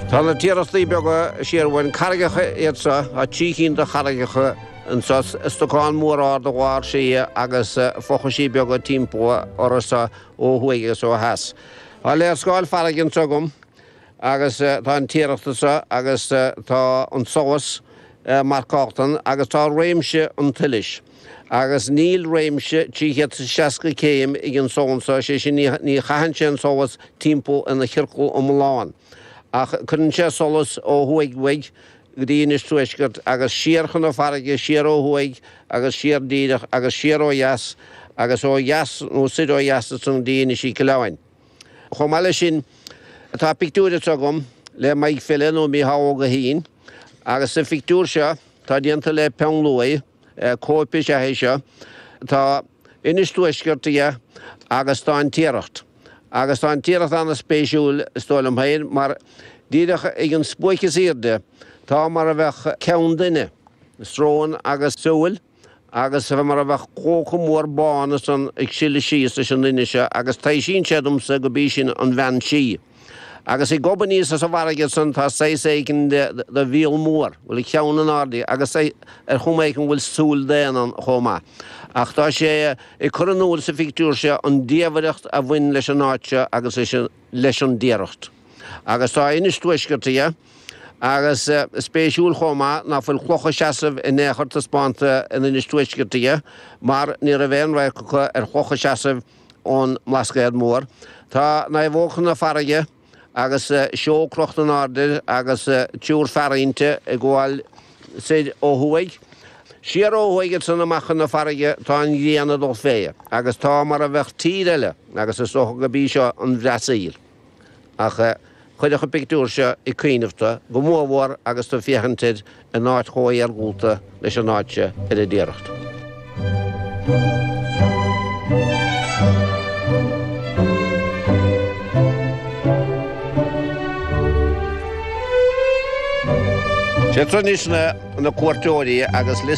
Tá na Tiarachtaí Beaga siar uainn, carraigeacha iad seo, tá trí chinn de charraigeacha anseo, stocáin mhóra ar a bharr thiar agus fochaisí beaga timpeall orthu ó thuaidh agus ó theas. Tá léarscáil farraige anseo agam agus tá an Tiaracht anseo agus tá an solas marcáilte ann agus tá réimse an tsolais. Agus níl réimse 360 céim ag an solas seo, sé sin ní chaitheann sé an solas timpeall ina chiorcal iomlán, ach cuireann sé solas ó thuaidh uaidh go dtí Inis Tuaiscirt agus siar chun na farraige, siar ó thuaidh agus siar díreach agus siar ó dheas agus ó dheas nó soir ó dheas ansan go dtí Inis Mhic Uileáin. Chomh maith le sin, tá pictiúr anso agam le Mike Phelan ó Mhícheál Ó Gaoithín agus sa phictiúir seo tá déanta le peann luaidhe, Cóip is ea é seo. Tá Inis Tuaiscirt aige agus tá An Tiaracht. Agus tá An Tiaracht an-spéisiúil, is dóigh liom féin, mar díreach ag an spuaic is airde tá mar a bheadh ceann duine, srón agus súil, agus mar a bheadh clóca mór bán san ag sileadh síos leis an duine seo agus taibhsíonn sé domsa gurb í sin an bhean sí. Agus ag gobadh aníos as an bhfarraige san tá saghas éigin de mhíol mór, bhuel, a cheann in airde agus ar chuma éigin go bhfuil súil daonna ann chomh maith. Ach tá sé ag cur in iúl sa phictiúr seo an diamhaireacht a bhain leis an áit seo agus leis an dTiaracht. Agus tá Inis Tuaiscirt aige. Agus is spéisiúil chomh maith ná fuil clocha seasamh in aon chor taispeánta in Inis Tuaiscirt aige mar ní raibh aon radharc acu ar chlocha seasamh Ón mBlascaod Mór tá naomhóg chun na farraige agus seol crochta in airde agus triúr fear inti ag gabháil soir ó thuaidh. Siar ó thuaidh ansin amach chun na farraige tá an ghrian ag dul fé agus tá mar a bheadh tír eile agus is dócha gurb í seo an Bhrasaíl. Ach chuirfeadh an pictiúr seo ag cuimhneamh tú, go mór mhór agus tú ag féachaint air in áit chomh iargúlta leis an áit seo ar an dTiaracht. Téann anois na cuairteoirí agus liosta.